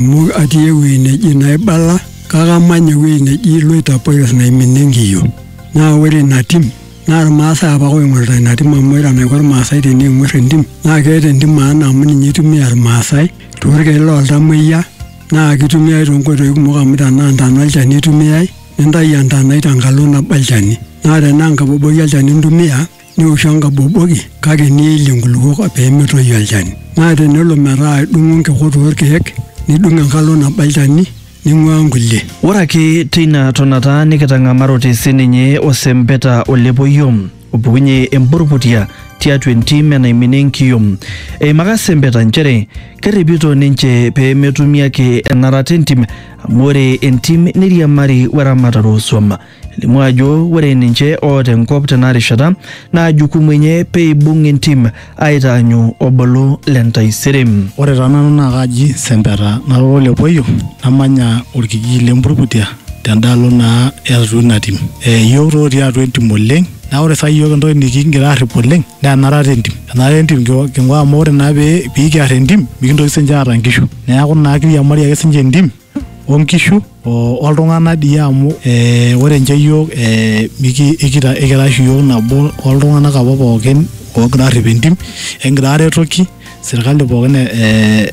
Amu atii ewueji neji naibala kake amanya ewueji neji iloitapoyos naiminie nkiyo. Naa ore ina tim naa Ilmaasai apake oing'orita ina tim amu ore enaiko Ilmaasai teneing'orr entim naa keeta entim maana amu ninye eitumia Ilmaasai toorkeek looltamoyia naa keitumiai toonkoitoi kumok amu tenaa ntana olchani eitumia nintayu entanai tenkalo nabo olchani. Naa tenaa enkaboboi olchani intumia nioshu enkaboboki kake niilie nkulupuok pee metoyu olchani. Naa tenelo metaa idung'o nkikot oo lkeek nidung enkalo nabo olchani ning'uaa nkulie. Ore ake teina tonata nikitang'amarote si ninye osempeta o lepoio opukunye empurrputia tiatua entim enaimina enkiyom. Eimaka sempeta nchere kerripito ninche pee metumi ake enarata entim amu ore entim neiriamari we ramatare oo suam. Elimu ajo ore ninche oota enkop tena rishata naa jukumu enye pee eibung entim aitaanyu obolo le ntaisere. Ore taa nanu naa kaaji Sempeta nara ole Poyio namanya olkijiji le Mburkutia tendaalo naa e atua ina tim. Iyiok taa otii atua entim oleng naa ore saa hii iyiok entoki nikigira aarrip oleng naa enarata e ntim. Enarata e ntim king'uaa amu ore naa pee kiarr entim mikintoki siininche aata nkishu. Neeku naa kiriamari ake siininche entim onkishu oltung'anak dii amu ee ore nche iyiook ee ikita ikira oshi iyiook nabo oltung'anak apa pookin oogira aarrip entim ekingira aaretoki sirkali pookin ee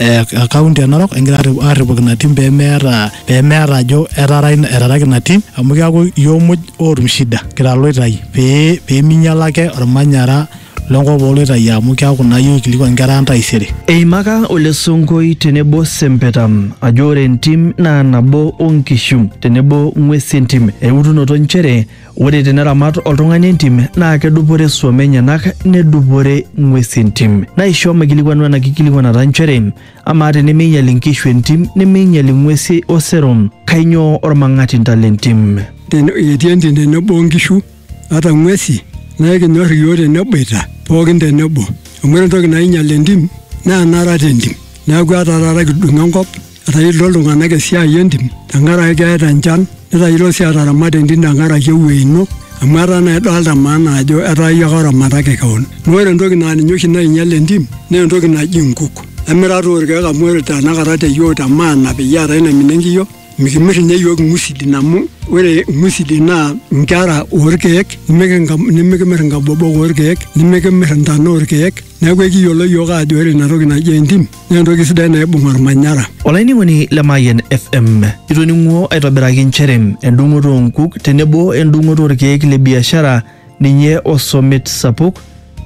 e kaunti e Narok ekingira aarripoki ina tim pemeeta pemeeta ajo etaara etaraki ina tim amu keeku iyiook muj ootum shida kira iloitai pee peminyiala ake ormanyara. lenkop ooloitayu amu keaku naa iyie oikilikuan nkera ang taisere. Eimaka Ole Sonkoi tenebo Sempeta ajo ore entim naa nabo o nkishu tenebo ng'uesi entim eutunoto nchere ore teneramat oltung'ani entim naa kedupore suom enyenak nedupore ng'uesi entim. Naisho maikilikuanu ena kikilikuanata nchere amaa tenemeinyal inkishu entim nemeinyal ing'uesi osero kainyoo olmang'atinta lentim? Etii entim tenebo o nkishu ata ng'uesi naa ekinyor iyiook teneboita pookin tenebo amu ore entoki nainyial entim naa enarat entim neeku etaa taata kidung enkop etayiolito iltung'anak esiai entim tenkaraki keeta enchan netayiolo sii ataramata entim tenkaraki ewuei ino amu etaa naa idolta maana ajo etaa iyie ake oramataki kewon naa ore entoki naa ninye oshi nainyial entim naa entoki naji inkuk emirata orkeek amu ore tanakata te yiok te maana peyie eetae naimina enkiyio. Mikimir ninye iyiook ing'usidin amu ore ing'usidin naa nkera oorkeek nimikimir inkabobok oorkeek nimikimir intana oorkeek neeku ekiyiolo iyiook aajo ore ina toki naji entim naa entoki sidai naibung olmanyara. Olainining'oni le Mayian FM, itoning'uo aitobiraki nchere endung'oto oo nkuk tenebo endung'oto oorkeek le biashara ninye osomit sapuk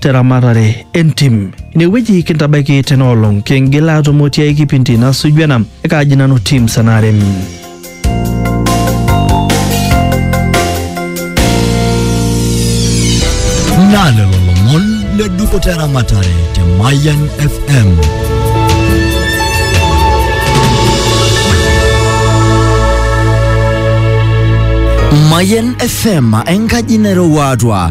teramatare entim. Inewueji kintabaiki tena olong kingil aatumo tiai kipindi nasuju ena ekaaji nanu Tim Sanarem. naa lelo lomon le dupoto eramatare te Mayan FM. Mayan FM enkaji nairowua atua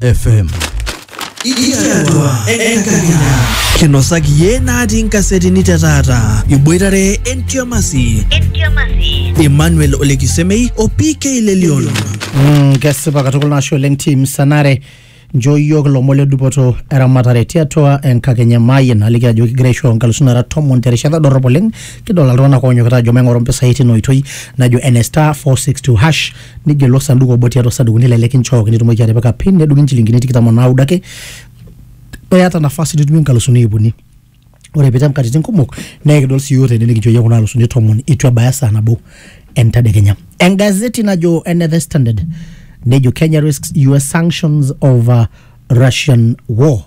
FM. Iyiatua enkakenya. Kinosaki iyie natii nkasetini te taata. Iboitare entiamasi. Emmanuel Olekisemei o PK Lelion. Mm, kesipa katukul nashe oleng tim sanare njo yiok ilomon le dupoto eramatare tiatua enkakenya emaayie naliki ajo kigira aisho nkalusuni nara tomon terishata dorrop oleng kidol iltung'anak oonyokita ajo maing'oru mpisai tina oitoi najo ene star 462 hash nigelu osanduku obo tiatua osadukuni lele kinchooki nitumoki atipika pin nedung'i inchilingini tikitam o naudo ake eata nafasi nitumie inkalusuni iip uni ore pitem katitin kumok naa ekidol sii yiok tene nikinchooyie kuna alusuni tomon itu ebaya saa nabo entadekenya engazeti najo ene the standard nejo kenya risks us sanctions over russian war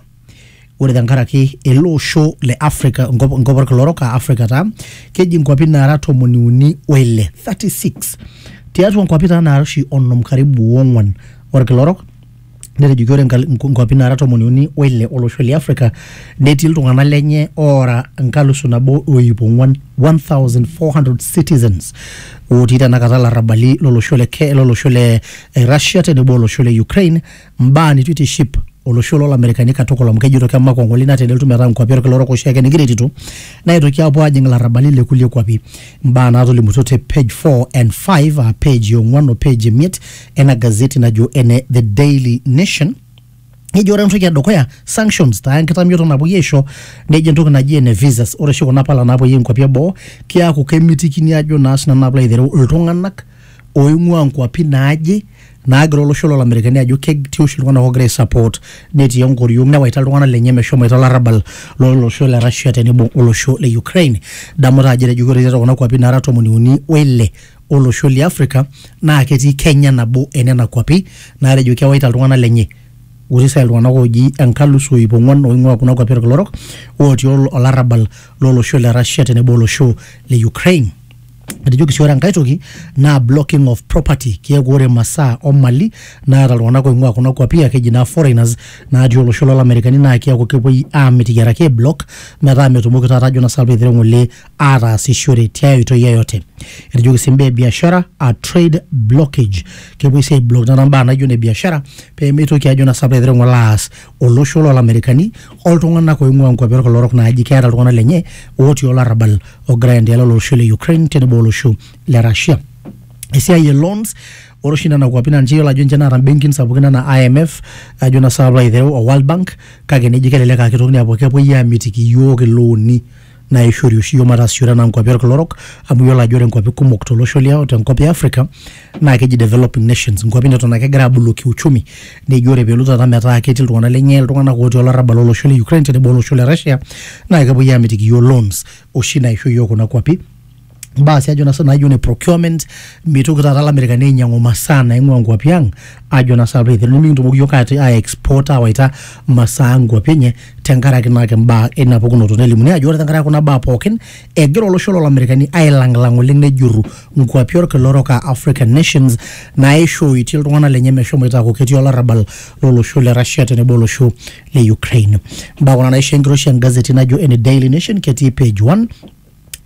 ore tenkaraki ele osho le Africa enkop enkop orkila orok aa Africa taa keji nkuapi naara tomoni uni oile 36 tiatua nkuapi taa naara oshi onom karibu ong'wan orkila orok netejoki ore nkal- nku- nkuapi naara tomoni uni oile olosho le Africa netii iltung'anak lenye oora nkalusu nabo o iip ong'wan 1400 citizens otii tenakata ilarrabali lolosho le Ke- lolosho le eh, Russia tenebo olosho le Ukraine mbaa nitu itiship olosho lolamerikani katukul amu kejito kemakwa ng'ole ina tenelotu metaa nkuapi olkila orok oshiake nikiretito naitoki apuo ajing ilarrabali le kulie kuapi mbaa naatolimutuo te page 4 and 5 aa page ong'uan o page emiet ena gazeti najo ene the daily nation nejo ore entoki edukuya sanctions taa enkitamioto napuoi aisho nejo entoki naji ene visas ore oshi kuna pala napuoi inkuapi eboo kiaku kemitikini ajo naa sinanu naa pilo aitereu iltung'anak oing'ua nkuapi naaje naagira olosho loo Lamerikani ajo ketii oshi iltung'anak oogira aisupport netii enkoriong newaita iltung'anak lenye meshomoita olarrabal lo losho le Russia tenebo olosho le Ukraine. Idamu taa ajo etejoki ore tiatua kuna kuapi naara tomoni uni o ile o losho li Africa naa ketii Kenya nabo e nena kuapi naatejo kewaita iltung'anak lenye otii saai iltung'anak ooji enkalusu o iip ong'uan oing'ua kuna kuapi olkila orok ootii olarrabal lo losho le Russia tenebo olosho le Ukraine. etejoki sii ore enkae toki naa blocking of property keeku ore masaa omali naata iltung'anak oing'ua kuna kuapi aa keji naa foreigners natii olosho lolamerikani naa keeku kepuoi amitiki araki ae block metaa metumoki taata ajo naa sinanu piitireu ng'ole ataasishore tiae oitoi yeyote etejoki sii imbaa e biashara aa trade blockage kepuoi sii ae block taata imbaa naijo ine biashara peemitoki ajo naa sinanu piitireu ng'ole aas olosho lolamerikani oltung'anak oing'ua nkuapi orkila orok naaji keeta iltung'anak lenye otii olarrabal ogira aendelea olosho le Ukraine tenebo olosho le Russia. Esiai e loans ore oshi nena kuapi naa ninche iyiolo ajo ninche naata mbenkin sapukin anaa IMF ajo naa saai paalo aitereu o World Bank kake neji kelelek aa kitokini aapuo kepuoi aamitiki iyiook ilooni naa eishori oshi iyiook mataasishore anaa nkuapi olkila orok amu iyiolo ajo ore nkuapi kumok tolosho liang tenkop e Africa naa keji developing nations nkuapi neton ake egira aabulu kiuchumi neji ore peelotu taata metaa ketii iltung'anak lenye iltung'anak otii olarrabal olosho le Ukraine tenebo olosho le Russia naa kepuoi aamitiki iyiook loans oshi naisho iyiook kuna kuapi mbaa si ajo nasa naijo ne procurement mitoki taata lamerikani ainyangu masaa naingua nkuapi ang ajo nasa apailong nimikintomoki yiok ati ai export awaita masaa nkuapi enye tenkaraki naake mbaa ina pukunoto nelimuni ajo ore tenkaraki kuna baa pookin egira olosho lo lamerikani ailanglang oleng nejuru nkuapi orkila orok aa african nations naishooitie iltung'anak lenye meshomoita aaku ketii olarrabal lolosho le Russia tenebo olosho le Ukraine mbaa kuna naisho enkiroshi engazeti najo ene Daily Nation ketii page 1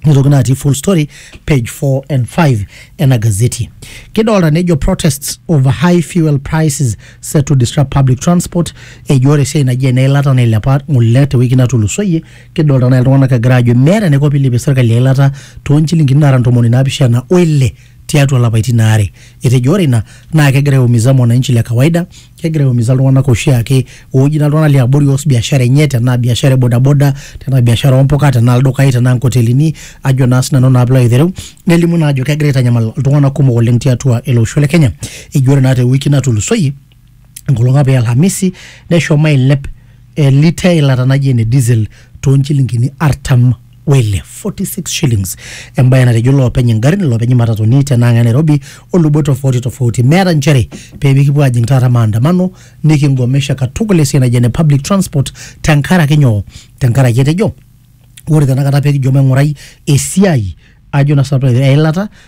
nitoki naa atii full story page 4 and 5 ena gazeti kidolta nejo protests over high fuel prices set to disrupt public transport ejo ore esiai naji eneilata nailepa ng'ole tewiki natulusoyie kidolta naa iltung'anak egira ajo meeta enaiko piilepie serkali eilata toonchilingini naara ntomoni naapishana o ile tiatua lapaitin aare etejo ore ina naa kegira aiumiza mwananchi le kawaida kegira aiumiza iltung'anak oshiake ooji naa iltung'anak liabori oos biashara enye tenaa biashara e bodaboda tenaa biashara ompuka tenaa ildukai tenaa nkotelini ajo naa sinanu naa piilo aitereu nelimu naa ajo kegira aitanyamal iltung'anak kumok oleng tiatua ele osho le kenya eji ore naa te wiki natulusoyie enkolong apa e alhamisi neshomo ailep eh, lita eilata naji ene diesel tonchilingini artam wele 46 shillings embaye natejo loopeny ingarrin loopeny imatatuni tenaang e nairobi olubot tofauti tofauti meeta nchere pee mikipuo ajing taata maandamano nikingomesha katukul esiai naji ene public transport tenkaraki nyoo tenkaraki etejo ore tenakata pekijo maing'urai esiai ajo na sinanu eilata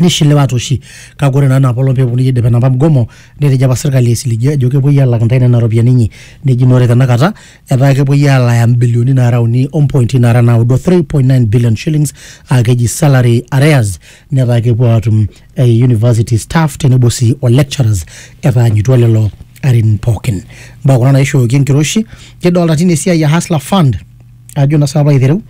nishiliwate oshi kake ore naa ina apolong peeponu aidip enapa mgomo netejo apa sirkali aisilige ajo kepuoi alak intae nena ropiyiani inyi neji naa ore tenakata etaa kepuoi alaya imbilioni naara uni ompointi naara naudo 3.9 billion shillings aa keji salary arrears netaa kepuo atum eh, university staff tenebo sii o lecturers etaanyutua lelo arin pookin mbaa kuna naishooki enkiroshi kidolta tine esiai e hustler fund ajo naa saapa aitereu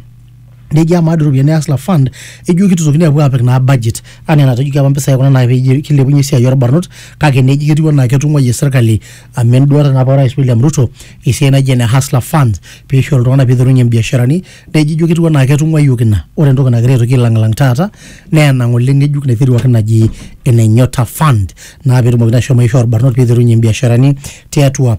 nejia amaa doi iropiyiani e Hustler Fund ejo kitutokini apuo apik naa budget anaa enatejoki apa mpisai kuna naa peyie kilepunyie esiai orbarnot kake neji ketiu anaa ketung'uayie serkali amu enduata naa apa orais William Ruto esiai naijo ene Hustler Fund pisho iltung'anak piterunyie imbiasharani neji ijo ketiu anaa ketung'uayioki ina ore entoki nagira aitoki ailang'ilng taata naa ena ng'ole ng'ejuk naiteruaki naji ene Nyota Fund naa petumokini ashom aishoo irbarnot piterunyie imbiasharani tiatua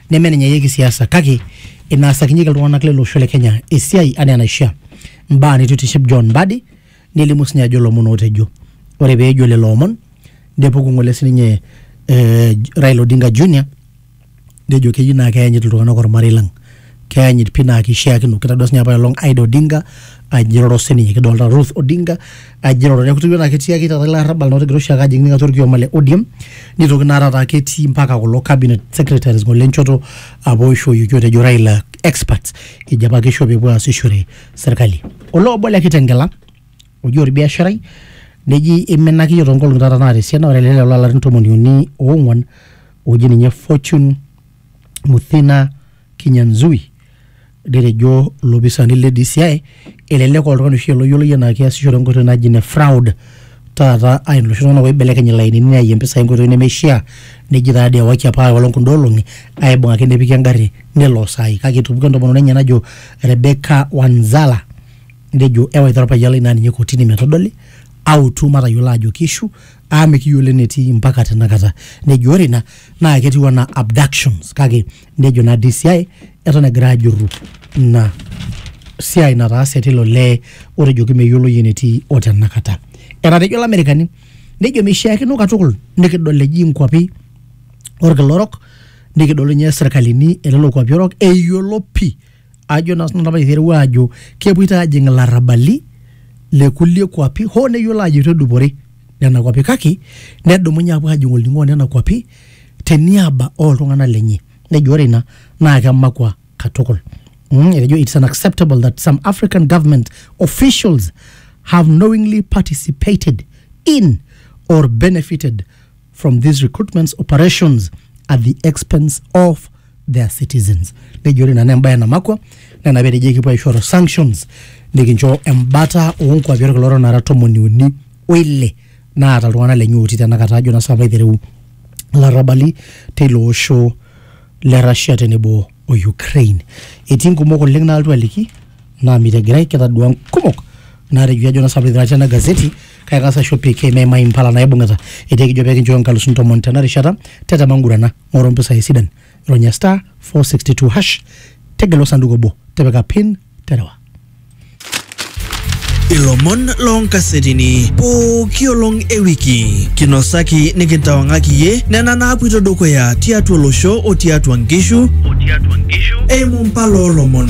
nemenenyayieki siasa kake inaasakinyeki iltung'anak lele osho le Kenya esiai anaa enaishia. Mbaa neitu itiship John Mbadi nelimu sinye ajo lomon ootejo. Ore pee ejo lelo omon nepuku ng'ole sininye eh, Raila Odinga Junior nejo keyieu naa keyanyit iltung'anak ormarei lang. Keyanyit pii naa keishiakino. Kitadua sinye apaelong Ida Odinga ajiroro sininye kidolita Ruth Odinga ajira ore kutu na ketii ake taata ilarrabal na otigira oshiake ajing ninye atua orkioma le ODM nitoki naa taata ketii mpaka kulo cabinet secretaries ngole enchoto apa oishoyioki otejo Raila experts ejo apa kisho pepuo aasishore serkali olee obo le Kitengela oji orbiasharai neji iminaki iyiook toonkolong'i taata naata esiana ore ele lelo larin tomoni uni oong'uan oji ninye Fortune Muthina Kinyanzui, netejo ilopisaani le DCI elelek oltung'ani oshi loyioloi enaa keasishore enkoitoi naji ene fraud taata aa iloshi tung'anak oibelekeny ilainini neyaie impisai enkoitoi nemeishia neji taa dii ewaki apa enkolong kunda olong'i aibung'aki nepiki engarri nelo saai kake etupukuo entomononi enye najo Rebecca Wanzala nejo ewaita orpayian lai naa ninye kotini metodoli autu matayiolo aajo keishu amu mikiyiolo enetii mpaka tenakata nejo ore ina naa ketiu anaa abductions kake nejo naa DCI eton egira ajurru ina siai nataase tilo lee otejoki meyioloi enetii o tenakata etatejo ilamerikani nejo meishiakino katukul nikidol eji inkuapi orkila orok nikidol ninye sirkalini elelo kuapi orok eyiolo pii ajo naa sinanu apa itereu aajo kepuoito aajing ilarrabali le kulie kuapi hoo neyiolo aajo itu edupore nena kuapi kake nedumunye apuo ajing olning'o onena kuapi teniaba oltung'anak lenye nejo ore ina naa kemakua katukul mm, etejo it's unacceptable that some african government officials have knowingly participated in or benefited from these recruitments operations at the expense of their citizens nejo ore nana embaye namakwa nena petejo ekipuo aishoru sanctions nikincho embata oonkuapi olkila orok nara tomoni uni oile naata iltung'anak lenye otii tenakata ajo nasipa aitereu ilarrabali teilo osho le Russia tenebo o Ukraine etii nkumok oleng naaltu aliki naa mitegirai kitadua nkumok naatejo ajo nasipa aitereu atii ena gazeti kaitaasa aisho PK meimai impala naibung'ita etii ekijo pee kinchooyo inkalusuni tomon tena rishata tetema ngurana ng'oru impisai sidan ronya star 462 hash tegelu osanduku obo tipika pin terewa ilomon loonkasetini pooki olong e wiki kinosaki nikintawang'aki iye nena naapuito dukuya tiatua olosho o tiatua nkishu eimu mpala oolomon